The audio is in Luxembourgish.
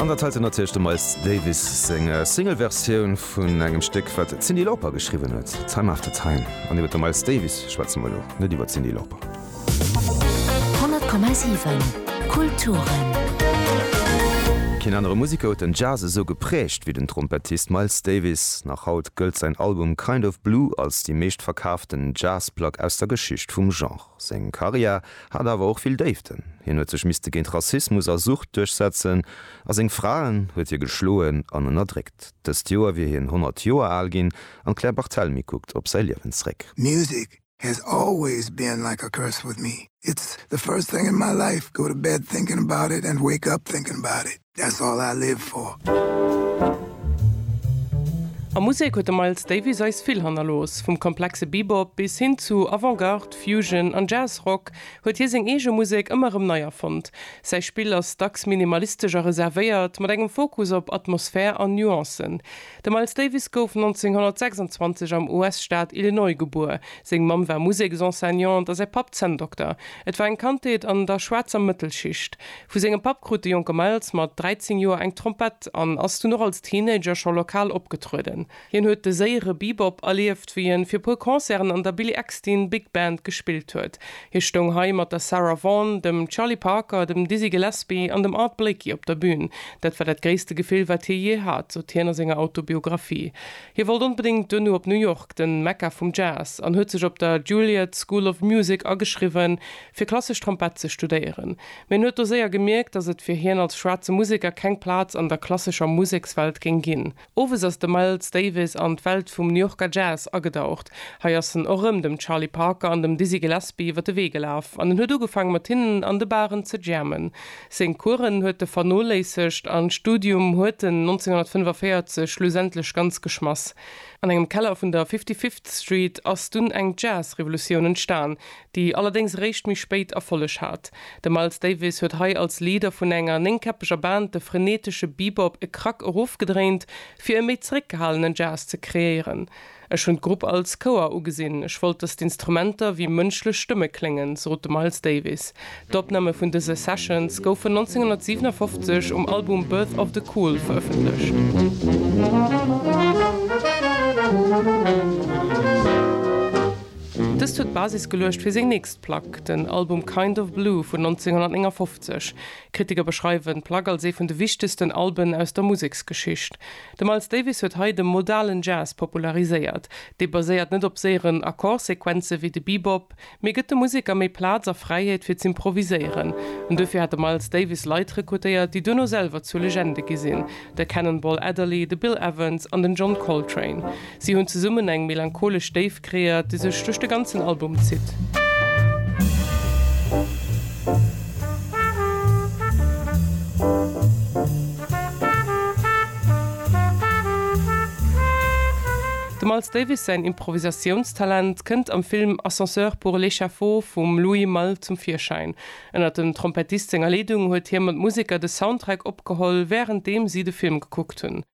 An dat heiten ass natierlech dem Miles Davis seng Single-Versioun vun engem Stéck, wat d'Cyndi Lauper geschriwwen huet, Time After Time. An iwwer de Miles Davis schwätze mer elo, net iwwer d'Cyndi Lauper. 100,7 Kulturen. Keen anere Museker huet den Jazz esou geprägt wéi den Trompettist Miles Davis. Nach haut gëllt säin Album Kind of Blue als déi meeschtverkaaften Jazz-Plack aus der Geschicht vum Genre. Seng Karriär hat awer och vill Déiften. Hien huet sech misste géint Rassismus a Sucht duerchsetzen a seng Fra huet hie geschloen an ënnerdréckt. Dëst Joer wier hien 100 Joer al ginn an d'Claire Barthelmy kuckt op säi Liewen zréck. Music has always been like a curse with me, it's the first thing in my life, go to bed thinking about it and wake up thinking about it. That's all I live for. A Musek huet de Miles Davis eis vill hannerlooss. Vum komplexe Bebop bis hin zu Avant-Garde, Fusion an Jazz-Rock huet hie seng eege Musek ëmmer erëm nei erfonnt. Säi Spill ass dacks minimalistesch a reservéiert, mat engem Fokus op Atmosphär an Nuancen. De Miles Davis gouf 1926 am US-Staat Illinois gebuer. Seng Mamm war Museksenseignante a säi Papp Zänndokter. Et war eng Kandheet an der schwaarzer Mëttelschicht. Vu sengem Papp krut de jonke Miles mat 13 Joer eng Trompett an ass dunn och als Teenager scho lokal opgetrueden. Hien huet de séiere Bebop erlieft, wéi en fir puer Concerten an der Billy Eckstine Big Band gespillt huet. Hie stoung hei mat der Sarah Vaughan, dem Charlie Parker, dem Dizzy Gillespie an dem Art Blakey op der Bün. Dat war dat gréisste Gefill, wat hie jee hat, sot hien a senger Autobiographie. Hie wollt onbedéngt duerno op New York, den Mekka vum Jazz, an huet sech op der Juilliard School of Music ageschriwwen, fir klassesch Trompett ze studéieren, mä en huet do séier gemierkt, datt et fir hien als schwaarze Museker keng Plaz an der klassescher Musekswelt géing ginn. Owes ass de Miles Davis an d'Welt vum New Yorker Jazz agedaucht. Hei ass en och rëm dem Charlie Parker an dem Dizzy Gillespie iwwer de Wee gelaf an en huet ugefaang mat hinnen an de Baren ze jammen. Seng Coursen huet e vernoléissegt an d'Studium huet en 1945 schlussendlech ganz geschmass. An engem Keller vun der Fifty-Fifth Street ass dunn eng Jazz-Revolutioun entstan, déi allerdéngs eréischt méi spéit Erfolleg hat. De Miles Davis huet hei als Leader vun enger néngkäppeger Band de frenetesche Bebop e Krack erofgedréint, fir e méi zeréckgehalenen Jazz ze kreéieren. Ech hunn d'Grupp als Chouer ugesinn, ech wollt, datt d'Instrumenter wéi mënschlech Stëmme kléngen, sot de Miles Davis. D'Opname vun dëse Sessions goufen 1957 um Album Birth of the Cool verëffentlecht. Dëst huet d'Basis geluecht fir seng nächst Plack, den Album Kind of Blue vun 1959. Kritiker beschreiwen d'Plack als ee vun de wichtegsten Alben aus der Museksgeschicht. De Miles Davis huet hei de modalen Jazz populariséiert. Dee baséiert net op séieren Akkordsequenze wéi de Bebop, Mee gëtt de Museker méi Plaz a Fräiheet fir z'improviséieren. An duerfir hat de Miles Davis Leit rekrutéiert, déi duerno selwer zu Legende gi sinn, de Cannonball Adderley, de Bill Evans an den John Coltrane. Si hunn zesummen eng melancholesch Déift kreéiert, déi sech duerch de ganzen Album zitt. Dem Miles Davis säin Improvisatiounstalent kënnt am Film Ascenseur pour l'échafaud vum Louis Malle zum Virschäin. Ënnert dem Trompettist senger Leedung huet hie mat Museker de Soundtrack opgeholl, wärenddeem si de Film gekuckt hunn.